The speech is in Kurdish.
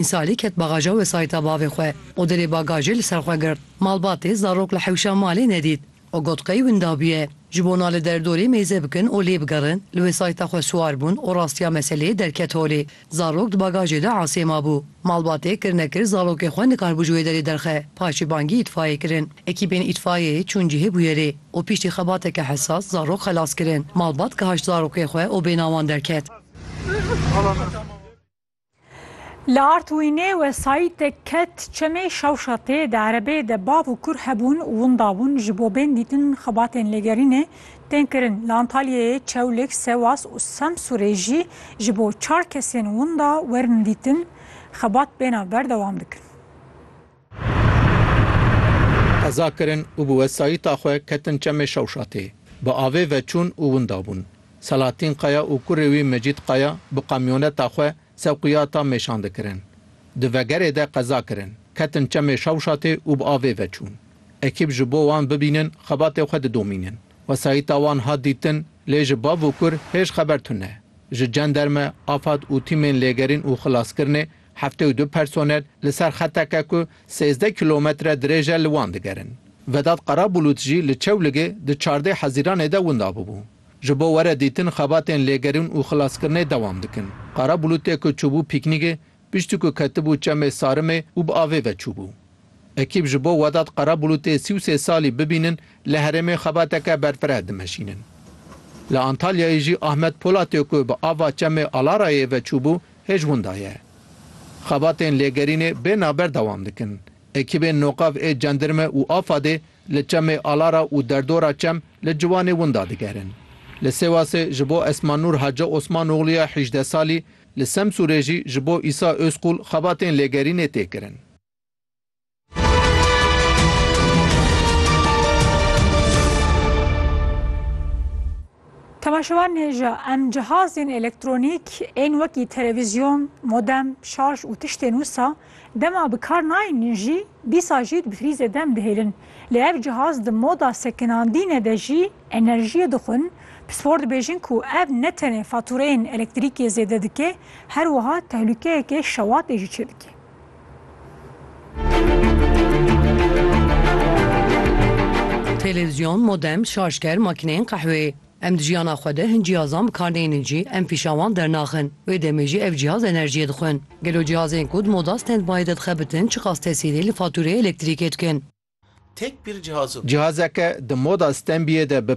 Mîsalî ket bagaja wesayîta bavê xwe û dilê bagajê li ser xwe girt. Malbatê zarok li hewşa malê nedît û got qey winda bûye. Ji bo na li derdorê mêze bikin û lê bigerin, li wesayîta xwe siwar bûn û rastiya meseleyê derket holê. Zarok di bagajê de asê mabû. Malbatê kir nekir zarokê xwe nikaribû ji wê derê derxe. Paşê bangî îtfayê kirin. Ekîbên îtfayeyê çûn cihê bûyerê û piştî xebateke hesas zarok xelas kirin. Malbat gihaşt zarokê xwe û bênawan derket. Li Artwînê wesayîtek ket çemê Şewşatê di erebeyê de bav û kur hebûn û winda bûn ji bo bên dîtin xebatên lêgerînê tên kirin. Li Antalyayê, Çewlik, Sewas û Semsûrê jî ji bo çar kesên winda werin dîtin xebat bênav berdewam dikin. Qeza kirin û bi wesayîta xwe ketin çemê Şewşatê. Bi avê ve çûn û winda bûn. Selahattin Kaya û kurê wî Mecîd Kaya bi kamyoneta xwe sewqiyata mêşan dikirin. Di vegerê de qeza kirin, ketin çemê Şewşatê û bi avê ve çûn. Ekîb ji bo wan bibînin xebatê xwe didomînin. Wesayîta wan hat dîtin, lê ji bav û kur hêj xeber tune. Ji cenderme, afad û tîmên lêgerîn û xilaskirinê Heftê û du personel li ser xeteke ku sêzdeh kîlometre dirêj e li wan digerin. Vedat Qarabulut jî li Çewligê di çardeh hezîranê de winda bûbû. Ji bo were dîtin xebatên lêgerîn û xilaskirinê dewam dikin. Qarabulutê ku çûbû pîknîgê, piştî ku ketibû çemê Sarimê û bi avê ve çûbû. Ekîb ji bo Vedat Qarabulutê sî û sê salî bibînin li herêmê xebateke berfireh dimeşînin. Li Antalyayê jî Ahmet Polatê ku bi ava çemê Alarayê ve çûbû Hêj winda ye. Xebatên lêgerînê bê naber dewam dikin. Ekîbên Nokav ê Cendirme û Afadê li çemê Alara û derdora çem li ciwanê winda digerin. Li Sêwasê ji bo Esma Nur Hace Osmanoglû ya hîjdeh salî, li Semsûrê jî ji bo Îsa Ozqul xebatên lêgerînê tê kirin. Temaşevan hêja em cihazên elektronîk ên wekî televîzyon, modem, şarj û tiştên wisa dema bi kar nayên jî dîsa jî bi frîzê dem dihêlin. Lê ev cihaz di moda sekinandîne de jî enerjiyê dixwin. Pispor dibêjin ku ev ne tenê fatûreyên elektrîkê zêde dike, her wiha tehlûkeyeke şewatê jî çêdike. Televizyon, modem, şarjker, makîneyên qehwê. Em di jiyana xwe de hin cihazan bi kar neynin jî em pîşa wan dernaxin. Wê demê jî ev cihaz enerjiyê dixwin. Gelo cihazên ku di moda standby de dixebitin çiqas tesîrê li fatûreyê elektrîkê dikin? Tek bir cihazın. Cihazeke di moda standbyê de bi